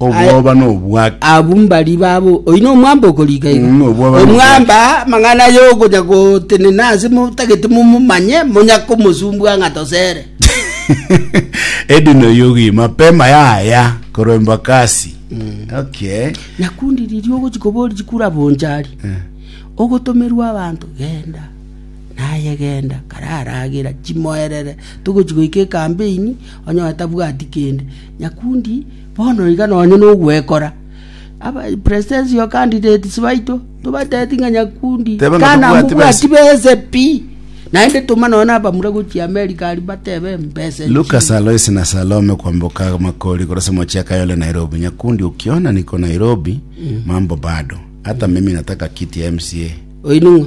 Obwoba nobwake. Abwo mbari babo oino omwamba okorika iga. Mm, obwoba ni omwamba amang'ana aye okonya gotenena ase motagete momomanye monya komosumbua ng'a tosere. edino yugi mapema yaya korwa embakasi okay Nakundi riria ogochi kobori chikura bonchari. Ogotomerwa abanto genda. Naye genda kararagera chimoerere togochi goika ekambeini onye tabwati kende nyakundi Bono iga nonye nogwekora, abapristesi o kandidetisi baito tobateeti ng'a nyakundi Tebe ng'a Kana tobwati mobwati bese pi, naende toma nonye abamura gochia Amerika aria batebe mbese nchire. Lucas Aloisi na Salome kwamboka makori korwa Samochi ya Kayole Nairobi. Nyakundi ukiona niko Nairobi mambo bado. Hata mimi nataka kiti ya MCA. Oino ng'a?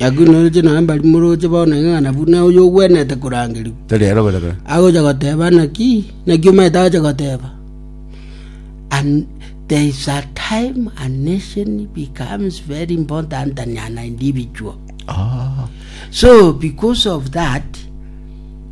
Nakwenoretie naye mbari moroche bono ing'ana buna oyogwenerete korangerigwa. Tari ero bono kare. Agocha goteba naki, naki omanyete agocha goteba? And there is a time a nation becomes very important than an individual. Oh. So because of that,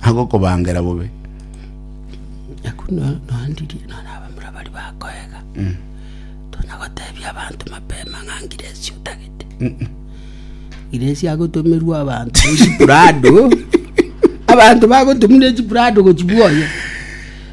agokobangera bobe. Na buna noandirie nonye abamura baria bakoega, tonya gotebia abanto mapema ng'a ngiresi otagete. Ngiresi agotomerwa abanto ne chiprado, abanto bagotumire chiprado gochibwoyia.